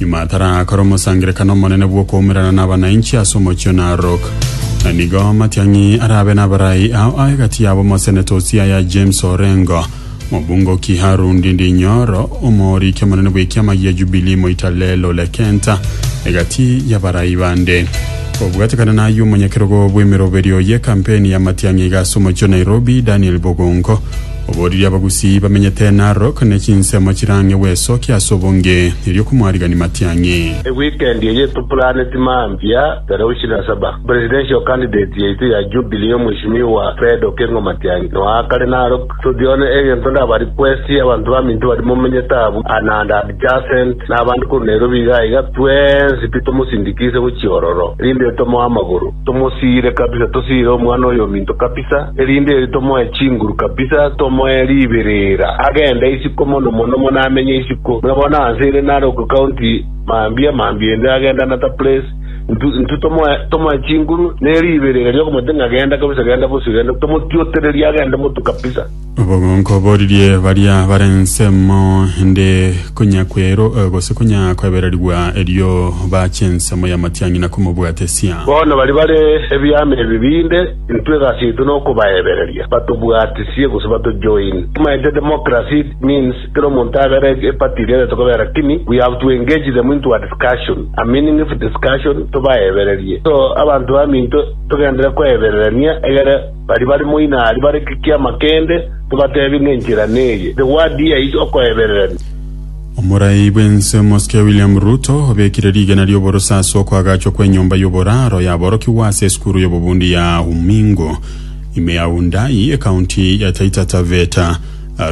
Nyuma tarakore omosangererekano omonene bw'okoumerana nabanainchi ase omochie o Narok. Na nigo Matiang'i arabe nabarai ao a egati yabo Moseneta o Siaya James Orengo, Mobunge o Kiharu Ndindi Nyoro, Omooriki omonene bw'ekiama gia Jubilee Moita Lel Ole Kenta, egati yabarai bande. Kobwatekana nayio omonyakerogo bw'emeroberi oye kampeni ya Matiang'i iga ase omochie o Nairobi Daniel Bogongo, Oboorire abagusii bamenyete Narok ne chinsemo chirange bw'esokia ase obonge, erio komwarigani matiang'i. Ewikendi eye topuraneti mambia Tarehe ishirini na saba, presidential candidate yaito ya Jubilee Mweshimiwa Fred Okengo Matiang'i noe akare Narok. Toti one egento ndaba request y'abanto baminto baria momenyete abwo and adjacent na abande korwa Nairobi iga iga twensi pi tomosindikise gochia ororo rinde tomoe amagoro. Tomosiire kabisa, tosiire omwana oyo ominto kabisa, erinde erio tomoe chinguru kabisa, tomoe riberera, agende isiko mono mono mono amenye isiko. Buna bono anse ire nare ogokaunti mambia mambia ende agende another place, intwe intwe tomoe tomoe chinguru ne riberera riokomote ng'a genda kabisa genda bosio genda, tomotiotererie agende motu kabisa. Obogonko boririe baria bare ensemo, inde konya kwero gose konya kwebererigwa, erio bache ensemo y'amatiang'ina komobwatesia. Bono baria bare ebiama ebibe inde intwe egasi yaito nokobaebereria batobwatisie gose batojoin. Tomaete democracy means kera omonto abere a party eria arete kobera kini we have to engage them into a discussion, a meaningful discussion tobaebererie so abanto baminto togendere koebererania egere Baria bare moina aria bare gekiama kende, tobateebie ng'a enchera neye, the word here is okoebererania. Omorai bw'ense Mosike William Ruto obekire rigena ri'oboroso ase okoagachwa kw'enyomba y'oboraro yaborokigwa ase esukuru y'obobundi ya Umingo ime ya Wundanyi, ekaunti ya Taita Taveta.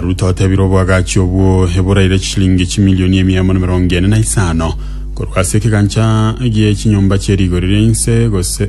Ruto otebire oboagachi obwo eboraire chishilingi chimilioni emia emo na emerongo ene na isano korwa ase ekegancha gie chinyomba chie rigori ria inse gose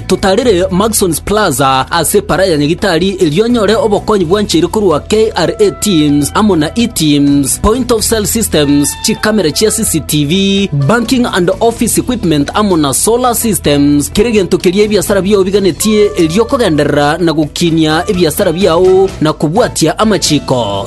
Totarire Maxons Plaza ase Para ya Nyagitari erio onyore obokonyi bwancheire korwa KRA Teams amo na eTeams, Point of Sale Systems, chikamera chia CCTV, Banking and Office Equipment amo na Solar Systems. Kera egento keria ebiasara biao biganetie erio okogenderera na gokinia ebiasara biao na kobwatia amachiko.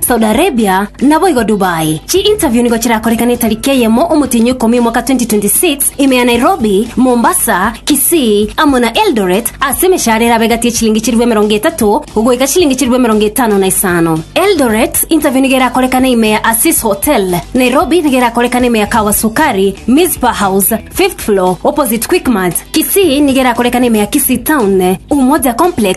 Saudi Arabia, naboigo Dubai. Chi interview nigo chirakorekane etariki eyemo omotienyi ikomi omwaka 2026 ime ya Nairobi, Mombasa, Kisii amo na Eldoret ase emeshahara erabe egati ye chilingi chilifu emerongo etato goika chilingi chilifu emerongo etano na isano. Eldoret interview nigo erakorekane ime ya Asis Hotel. Nairobi nigo erakorekane ime ya Kawa Sukari, Mizpah House, fifth floor, opposite Quickmart. Kisii nigo erakorekane ime ya Kisii Town, Umoja Complex,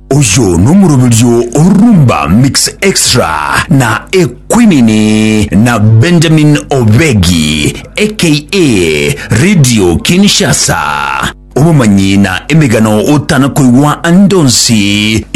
Oyo nomoroberio o Rumba Mix Extra na Ekwinini na Benjamin Obegi aka Radio Kinshasa. Obomanyi na emegano otana koigwa ande onsi.